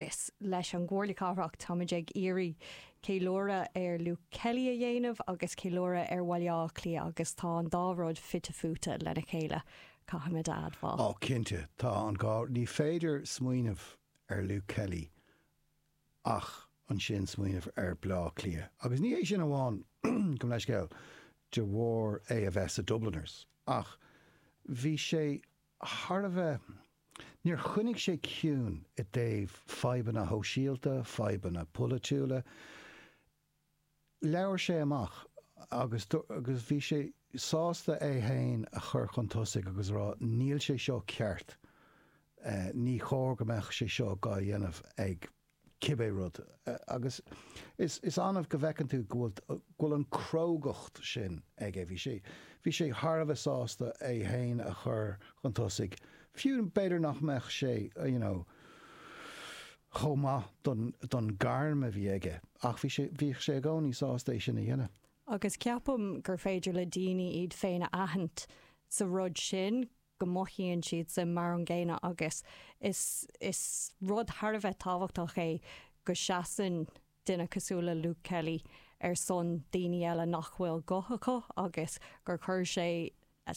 Is leis an gComhairle Cathrach táimid ag iarraidh ceiliúradh ar Luke Kelly a dhéanamh agus ceiliúradh ar Bhaile Átha Cliath agus tá an dá rud fite fuaite lena chéile, caithfimid a admháil. Ó cinnte, tá an dhá, ní féidir smaoineamh ar Luke Kelly ach ansin smaoineamh ar Bhaile Átha Cliath agus ní hé sin amháin go mba leithscéal de bharr é a bheith sa Dubliners ach bhí sé thar a bheith. Níor choinnigh sé ciúin i dtaobh fadhbanna shóisialta, fadhbanna polaitiúla. Labhair sé amach agus agus bhí sé sásta é féin a chur chun tosaigh agus a rá 'níl sé seo ceart, ní chóir go mbeadh sé seo dhá dhéanamh ag cibé rud. Agus is annamh go bhfeiceann tú go bhfuil an crógacht sin aige. Bhí sé, bhí sé thar a bheith sásta é féin a chur chun tosaigh, fiú b'fhéidir nach mbeadh sé you know chomh maith don don gairm a bhí aige ach bhí sé, bhíodh sé i gcónaí sásta é sin a dhéanamh. Agus ceapaim gur féidir le daoine iad féin a aithint sa rud sin. go mothaíonn siad sin mar an gcéanna agus is is rud thar a bheith tábhachtach é go seasann duine cosúil le Luke Kelly ar son daoine eile nach bhfuil guth acu agus gur chuir sé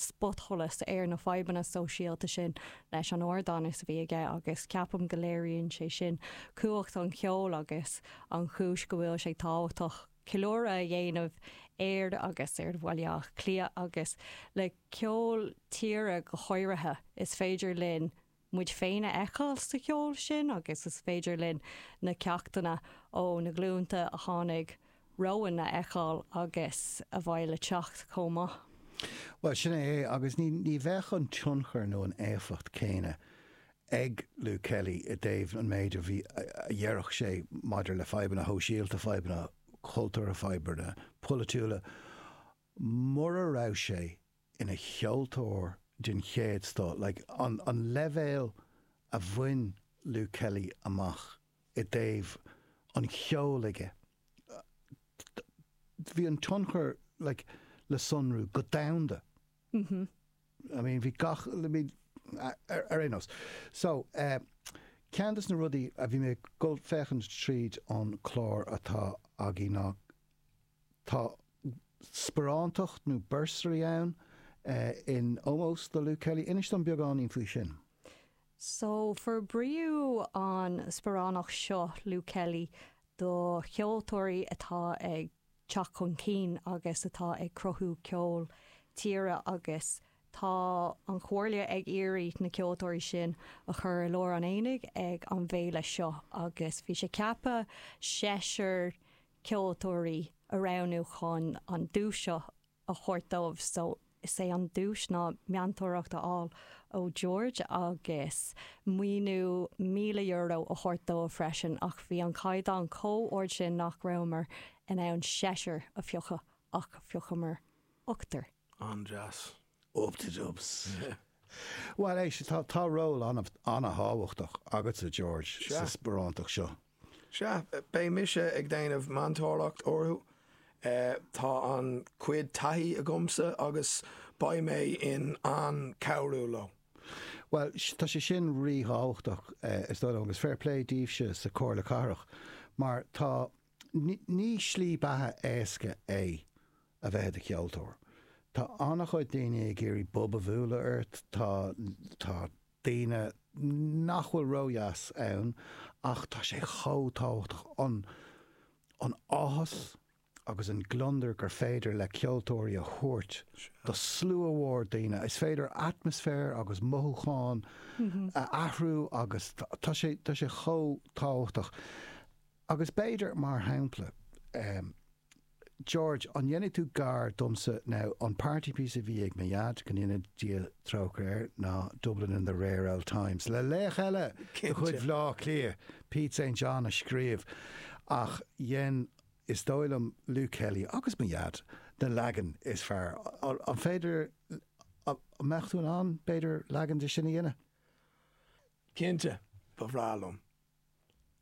spotsholas ar na fadhbanna sóisialta sin leis an ardán a bhí aige agus ceapaim go léiríonn sé sin cumhacht an cheoil agus an chúis go bhfuil sé tábhachtach ceiliúradh a dhéanamh air agus ar Bhaile Átha Cliath agus le ceol tíre go háirithe. Is féidir linn muid féin a fheiceáil sa cheol sin agus is féidir linn na ceachtanna ó na glúnta a tháinig romhainn a fheiceáil agus a bheidh le teacht chomh maith. Bhuel, sin é é agus ní bheadh an tionchar nó an éifeacht céanna ag Luke Kelly i dtaobh an méid a bhí, a déarfadh sé maidir le fadhbanna shóisialta, fadhbanna cultúrtha, fadhbanna polaitiúla, mura raibh sé ina cheoltóir den chéad scoth, like an an leibhéal a bhain Luke Kelly amach i dtaobh an cheoil aige, bhí an tionchar like le sonrú go domhanda, I mean bhí gach, I mean ar aon nós. So eh ceann de na rudaí a bhí mé ag dul ag féachaint tríd an clár atá againn ná, Tá sparánacht nó bursary ann in ómós do Luke Kelly. Inis dom beagáinín faoi sin. So, forbraíodh an sparánacht seo, Luke Kelly, do cheoltóirí atá ag teacht chun cinn agus atá ag cruthú ceol tíre agus tá an Chomhairle ag iarraidh na ceoltóirí sin a chur i lár an aonaigh ag an bhféile seo agus bhí sé ceaptha seisear ceoltóirí a roghnú chun an duais seo a thabhairt dóibh. So, is é an duais ná meantóireacht a fháil ó George agus maoiniú €1,000 a thabhairt dóibh freisin ach bhí an caighdeán chomh ard sin nach rabhamar in ann seisear a phiocadh ach phiocamar ochtar. An-deas. Bhuel, éist, tá ról an-thábhachtach agatsa, George, sa sparánacht seo. Sea, beidh mise ag déanamh meantóireacht orthu. Tá an-chuid taithí agamsa agus beidh mé in ann cabhrú leo. Bhuel, tá sé sin rí-thábhachtach, is dóigh liom, agus fair play daoibhse sa Chomhairle Cathrach, mar tá, ní slí beatha éasca é a bheith i do cheoltóir. Tá an-chuid daoine ag iarraidh bob a bhualadh ort, tá, tá daoine nach bhfuil ródheas ann ach tá sé chomh tábhachtach an, an áthas agus an gliondar gur féidir le ceoltóirí a thabhairt do slua mhór daoine, is féidir atmaisféar agus mothúcháin a athrú agus tá sé, tá sé chomh tábhachtach. Agus b'fhéidir, mar shampla, George, An ndéanfaidh tú gar domsa now, an party piece a bhí ag mo Dhaid, go ndéana Dia trócaire air, ná Dublin in the rare old times, le laoch eile de chuid Bhleá Cliath, Pete St John a scríobh ach dhein is dóigh liom Luke Kelly agus mo Dhaid na leagain is fearr. An féidir, an mbeadh tú in ann, b'fhéidir, leagan de sin a dhéanamh? Cinnte, ba bhreá liom.